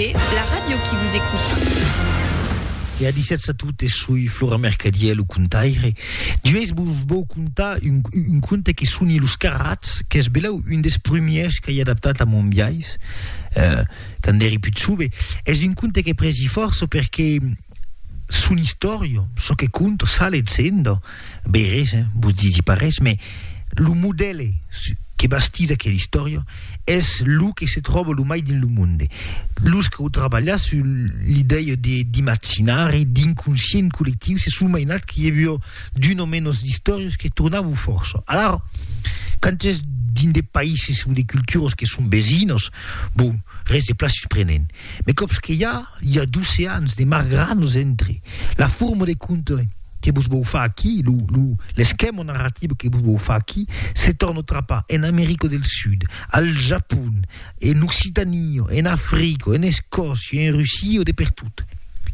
Arte, la ràdio qui vous écoute. E a 17 a totes, soi Flora Mercadier, lo contaire. Duèis vos vau contar un, un conte que soni Los Carrats, qu'es belau un des premiers qu'ai adaptat a mon biais, eh, quand eri put jove. Es un conte que presi fòrça perque Son istòria, çò que conta, sa legenda, bèi res, hein, vos disi pas res, mès lo modèle que bastís aquela istòria es lo que se tròba lo mai dins lo monde. Los qu'au trabalhat sul l'idèia de d'imaginari, d'inconscient collectiu, se son mainats que i aviá d'una o menos d'istòrias que tornavan fòrça. Alara, quand es dins de païses o de culturas que son vesinas, bon, res de plan susprenent. Mes còps que i a, i a d'oceans de margranos entre la forma de conte que vos vòu far aquí, lo, lo, l'esquèma narrativa que vos vòu far aquí, se torna trapar en America del Sud, al Japon, en Occitania, en Africa, en Escòcia, en Russia, de pertot.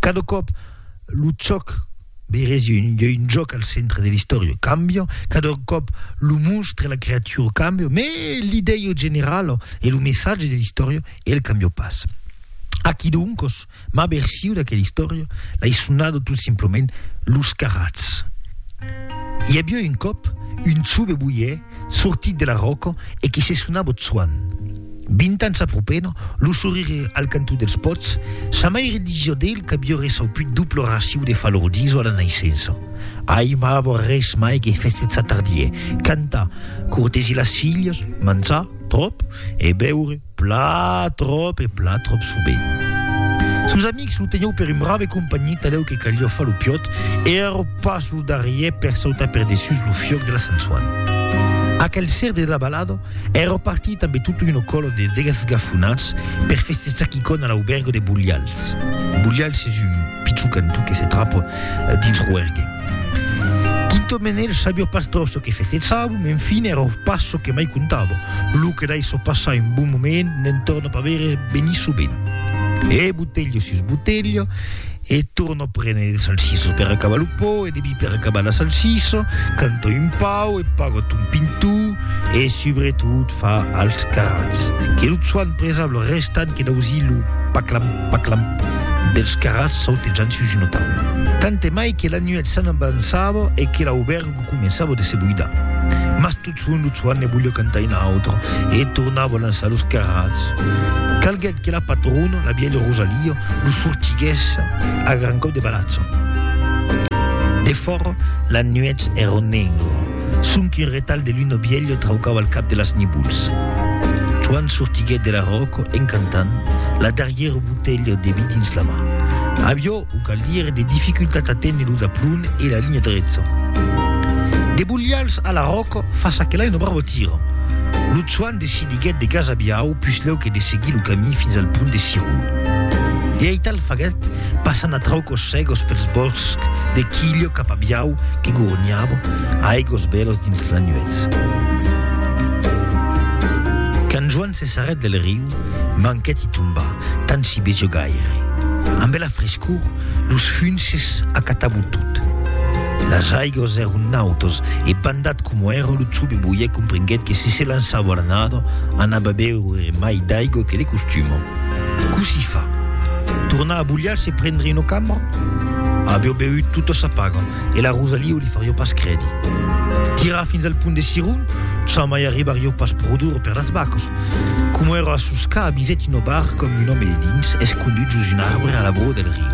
Cada còp. lo chòc veirèsi un ieu un jòc al centre de l'istòria cambia cada còp lo monstre la creatura cambia me l'idèia generala e lo messatge de l'istòria el cambia pas aquí doncos ma versiu d'aquela istòria l'ai sonada tot simplement los carrats i aviá un còp un chove boier Sortit de la ròca e qui se sona Botsuan. Vint ans aprupent, lo sorire al cantó dels pòts, sa maire disió d'el qu'avió ressauput duplo raciu de falordiso a la naissença. Ai mavo res mai que festetsar tardier, cantar, cortesir las filhas, manjar, tròp, e beure. Pla tròp e pla tròp sovent. Sos amics lo tenhèu per un brave companhi talèu que caliá far lo piòt e èra pas lo darrièr per sautar per dessús lo fiòc de la Sant Soan. Aquel ser de la balada èra partit ambe tota una còla de desgafonats per festejar quicòna a l'auberga de Bulhals. Bulhals es un. Pichucantu que se trap dins Roergue. Tinto Menel sabio pas trop çò que fesechavo, m'en fin èra pas çò que mai comptavo. Lo que daisso passar un bon moment n'en torna pas veire venir sovent. E botelho sus botelho, e torno prene de salsiço per acabar lo pò e de vi per acabar la salsiço, canto un pau e pago ton pintu e subretot fa als carrats que lo tsuan presable restant que dausí lo paclam. Paclam, dels carrats sautejant sus una taula. Tant e mai que la nuèch s'anavançava e que l'aubergo començava de se buidar. Mas tot son lo Tsuanne voliá cantar una autra e tornava lançar los carrats. Calguèt que la patrona, la vièlha Rosalia, lo sortiguèsse a gran còp de balatza. Defòra, la nuèch èra negra. Sonque un retal de luna bielha traucava al cap de las nibols. Joan sortiguèt de la ròca en cantant, la darrièra botelha de vi dins la mà. Avió, o cal dire, de dificultat a téner lo daplon e la linha drecha. De bolhals a la ròca, fa ça que l'ai una barbotira! Lo Joan decidiguèt de gasabiar au puslèu que de seguir lo camí fins al pont de Cirun. E aital faguèt passan a traucos cegos pels bòsc de Quillo cap a Biau que gorniava a aigos bèlos dins la nuètz. Quand Joan se sarrèt del riu, manquèt i tombar, tant si besió gaire. Amb bela frescor, los funces acatavo tot. Las aigos èron nautos e bandat coma èra lo tsobe boièc comprenguèt que si se lançava a la nada, anava a beure mai d'aigo que de costuma. Cossí fa? Tornar a bulhar se prendre una cama? Aveu beut tota sa paga e la Rosaliu li farió pas credi. Tirar fins al punt de Siron, jamai arribarió pas produr per las vacas. Coma era a Susca avisèt una barca amb un òme de dins escondut sus un arbre a la broa del riu.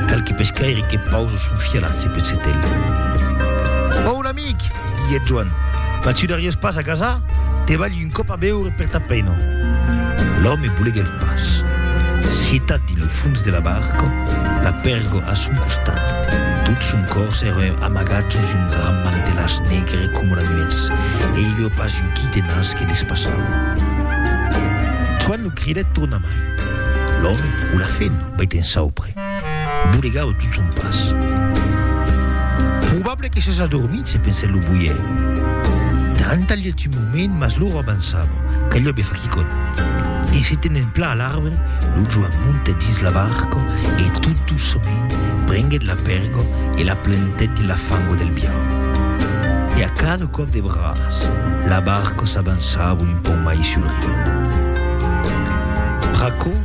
Qualque pescaire que pausa son fialat se peth setèl. Amic, diguèt Joan, quand tu n'arrives pas a casa, te balhi un còp a beure per ta pena. L'òme boleguèt pas. Citat dins lo fons de la barca, la pèrgo a son costat, tot son còrs èra amagat sus un grand mantelàs negre coma la nuètz e i aviá pas un quitenas que despassava. Joan lo cridèt tornamai. L'òme, o la fena, vei t'ensaupre. Bolegau tot son pas. Probable que s'es adormit, se pensèt lo boier. Tantalhèt un moment, mas l'ora avançava, calhèt be far quicòm. E se tenent plan a l'arbre, lo Joan montèt dins la barca e tot doçament prenguèt la pèrga e la plantèt dins la fanga del biau. E a cada còp de braç, la barca s'avançava un pauc mai sul riu. Pr'aquò,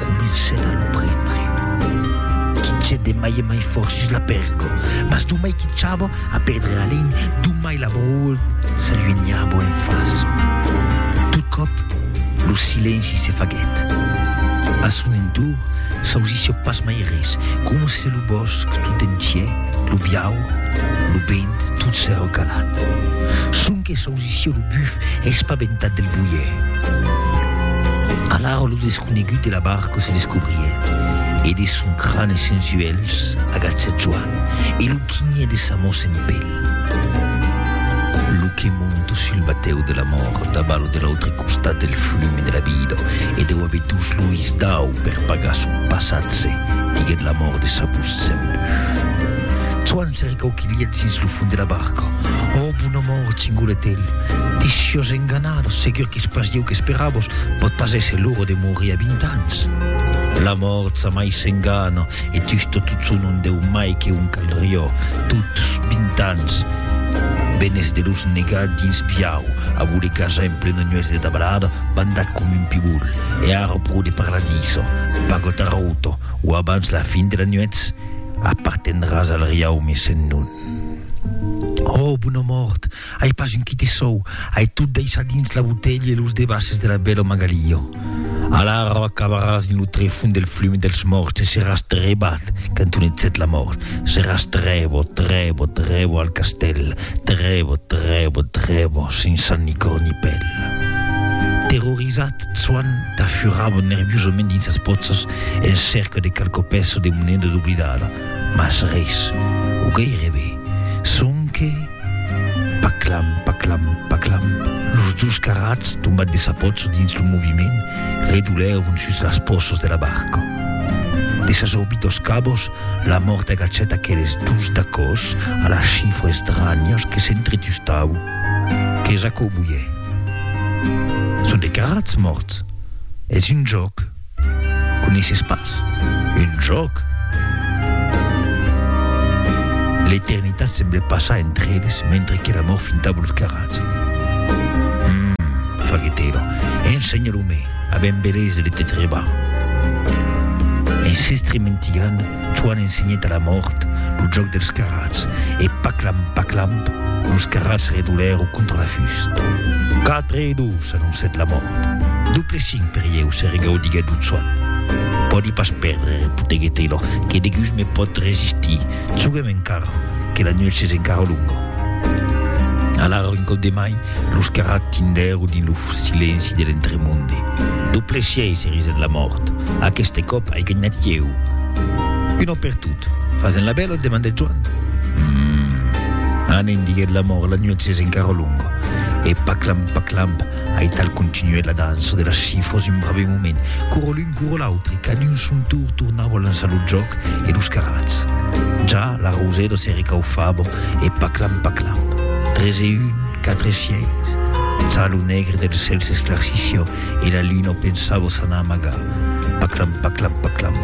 Comencèt a lo prendre. Quitchèt de mai e mai fòrt sus la pèrgo, mas domai quitchava a perdre alin, domai la brol s'aluenhava en fasa. Tot còp, lo silenci se faguèt. A son entorn s'ausissiá pas mai res, coma se lo bòsc tot entièr, lo biaur, lo vent, tot s'èra calat. Sonque s'ausissiá. Lucio lo buf, espabentat del boier. Alara lo desconegut de la barca se descobrie, e de son crane sens uelhs agachèt Joan e lo quinhè de sa mò sen pel. Lo que monta sul batèu de la mòrt a balo de l'autre costat del flume de la vida e deu aver dus lois dau per pagar son passatge, diguèt la mòrt de sa bus sen buf. Se recau que lièt dins lo fond de la barca. Ò, bon amor, chingolet el, te siós enganada, segur qu'es pas ieu qu'esperavos, pòt pas èsser l'ora de morir a vint ans. La mòrt ça mai s'engana, e tusto tot son un deu mai que un calrió, tots vint ans, benes de los negar dins piau, a voler cajar en plena nuèch de dabalada, bandat com un pibol, e ara pro de parlar d'içò, pago tarauto, o abans la fin de la nuèch, Apartendràs al riaumi sen non. Ò, bona mòrt! Ai pas un quite sòu, ai tot daissat dins la botelha e los debasses de la bèla Magaliò. Alara acabaràs dins lo trefond del flum dels mòrts e seràs trebat, cantonet set la mòrt, seràs trèbo, trèbo, trèbo al castèl, trèbo, trèbo, trèbo, sens sang ni còr ni pèl. Terrorizat, Soan t'afurravan nerviosament dins sas pòchas en cèrca de qualque pèça de moneda doblidada, mas res, o gairebe, sonque, paclamp, paclamp, paclamp, los dus carrats, tombats de sa pòcha dins lo moviment, redolèron sus las pòchas de la barca. De sas orbitas cabas, la mòrt agachèt aqueles dus dacòs a las chifras estranhas que s'entretustavan, Qu'es aquò, boier? Son de carrats mòrts. Es un jòc. Coneisses pas? Un jòc? L'eternitat semble passar entre eles mentre que l'amor finta los carrats. Hum, faguèt era. Ensenha lo me, a ben beleis de te trebar. En s'estrementilhant, Joan ensenhèt a la mòrt lo jòc dels carrats, e paclam, paclam, los carrats redolèro contra la fust. Quatre e dos, anoncèt la mòrt. Doble cinc per ieu, se regaudiguèt lo Joan. Pòdi pas pèrdre, repoteguèt Taylor, que degus me pòt resistir. Joguem encara, que la nuèch es encara longa. Alara un còp de mai, Los que ratindèu dins lo silenci de l'entremonde. Doble sièis eris en la mòrt. Aqueste còp ai ganhat ieu. Un òme per tot. Fas en la bèla? demandèt Joan. Hum! Anem, diguèt la mòrt, la nuèch es encara longa. E paclamp, paclamp, aital continuèt la dança de las chifras un brave moment. Corolum! Curo l'autre, qu'a d'un son tour tornau a lançar lo jòc e los carats. Ja la Rausedo se recaufava e paclam paclam, tres e un, quatre sièis. Ja lo negre del cèl s'esclarcissió e la luna pensava s'anar amagar. Paclam paclam paclam.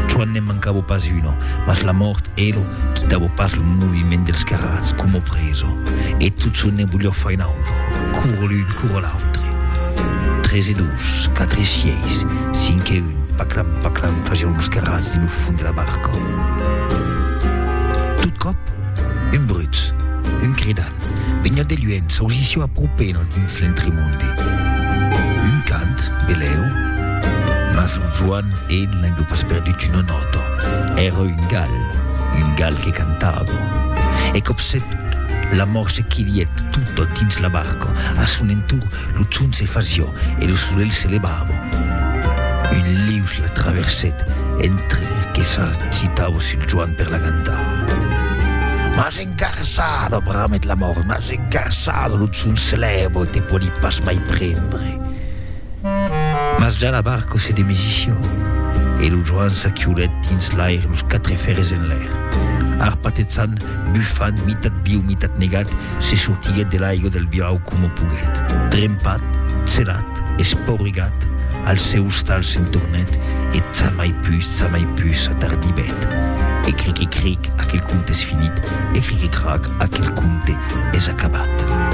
Çuan ne'n mancava pas una, mas la mòrt elo quitava pas lo moviment dels carats, coma preso. E tot çò ne volió far un autre. Curo l'un, curo l'autre. Tres e dos. Los quatre sièis, cinc e un, paclan, paclan, fasèu los carrats dins lo fond de la barca. Tot còp, un brutz, un cridal, veniá de luènh, s'ausissió a propena dins l'entremonde. Un cant, belèu, mas lo Joan e l'aivió pas perdut una nòta. Èra un gal, un gal que cantava. E còpsec, la mòrt se quilièt tota dins la barca, a son entorn, Lo chum se fasió e lo solelh se levavo. Un lius la traversèt entre que s'agitavo sul Joan per la cantar. M'as engarçado, bramet la mòrt, m'as engarçado, lo chum se lèvo e te pòdi pas mai prendre. Mas ja la barco se demesició e lo Joan s'aquiolèt dins l'aire los quatre fèrres enlèr. Arpatejant, bufant, mitat viu, mitat negat, Se sortiguèt de l'aiga del biau coma poguèt. Trempat, celat, espaurigat, al seu ostal se'n tornèt e tsamai pus, tsamai pus s'atardibèt. E cric e cric, aquel conte es finit, e cric e crac, aquel conte es acabat.